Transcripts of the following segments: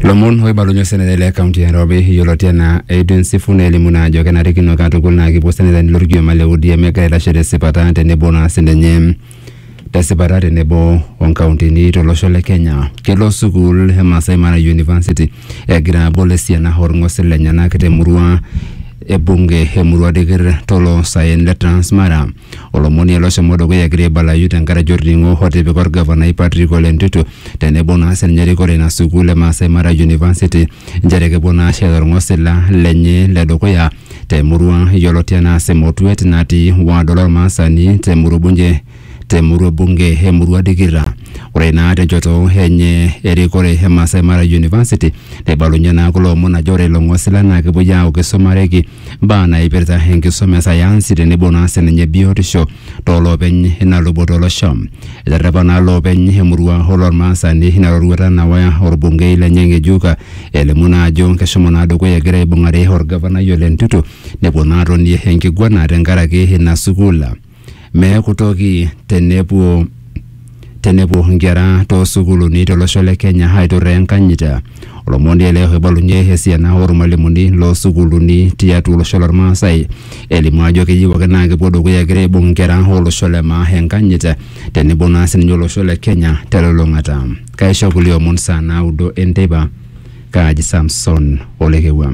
lomon oibalunye osenetani le kaunti e Nairobi yioloti enaa Edwin Sifuna elimu naa ajo kenarikino katukul naa kipuo senetani lorkioma le ODM egira aitashe tesipata tenebo naa sininye tesipata tenebo onkauntini tolosho le Kenya. Kelo sukuul e Masai Mara University egira abol esiana orng'osil lenyenak temurua e bunge emurua dikir toloosaen le Transmara. Olomoni ele oshomo dukuya egira aibalayu tenkaraki olning'o otipika olgavanai Patrick Ole Ntutu tenebo naa sininye erikore ina sukuul e Maasai Mara University nchere kepuo naa aashet olng'osila lenye le dukuya te murua yioloti anaa Semotuet natii ward olmaasani te murua bunge te murua bunge e murua Dikirra. Ore naa tenchoto enye erikore e Maasai Mara University neibalunye naa kulo omon ajo ore ilo ng'osila naa kepuoi aaku keisumareki mbaa naaipirta enkisuma e sayansi tenebo naa sininye biotisho tooloopeny ina luboto olosho. Eterrepa naa loopeny emurua olormaasani ina roruata nawa orbungei lenye ng'ejuk elimu naa ajo keshomo naa dukuya egira aibung'are orgavanai Ole Ntutu nepuo naa atonie enkiguana tenkaraki ina sukuul. meeku toki tenepuo tenepuo nkera toosukuluni tolosho le Kenya aiturraa enkanyit. Olomoni ele oibalunye esiana ormalimuni loosukuluni tiatua olosho lormaasai elimu ajo keyieu ake naa kepuo dukuya egira aibung nkera olosho le maa enkanyit tenebo naa sininye olosho le Kenya telulung'ata. Kaisho kulie omon saa naudo enteipa. Kaaji Samson Olekewua.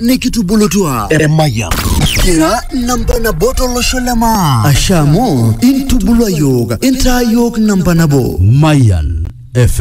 nikitubulutua emayian kira namba nabo tolosho le maa asha amu intubulua yiok intaa yiok namba nabo Mayan FM.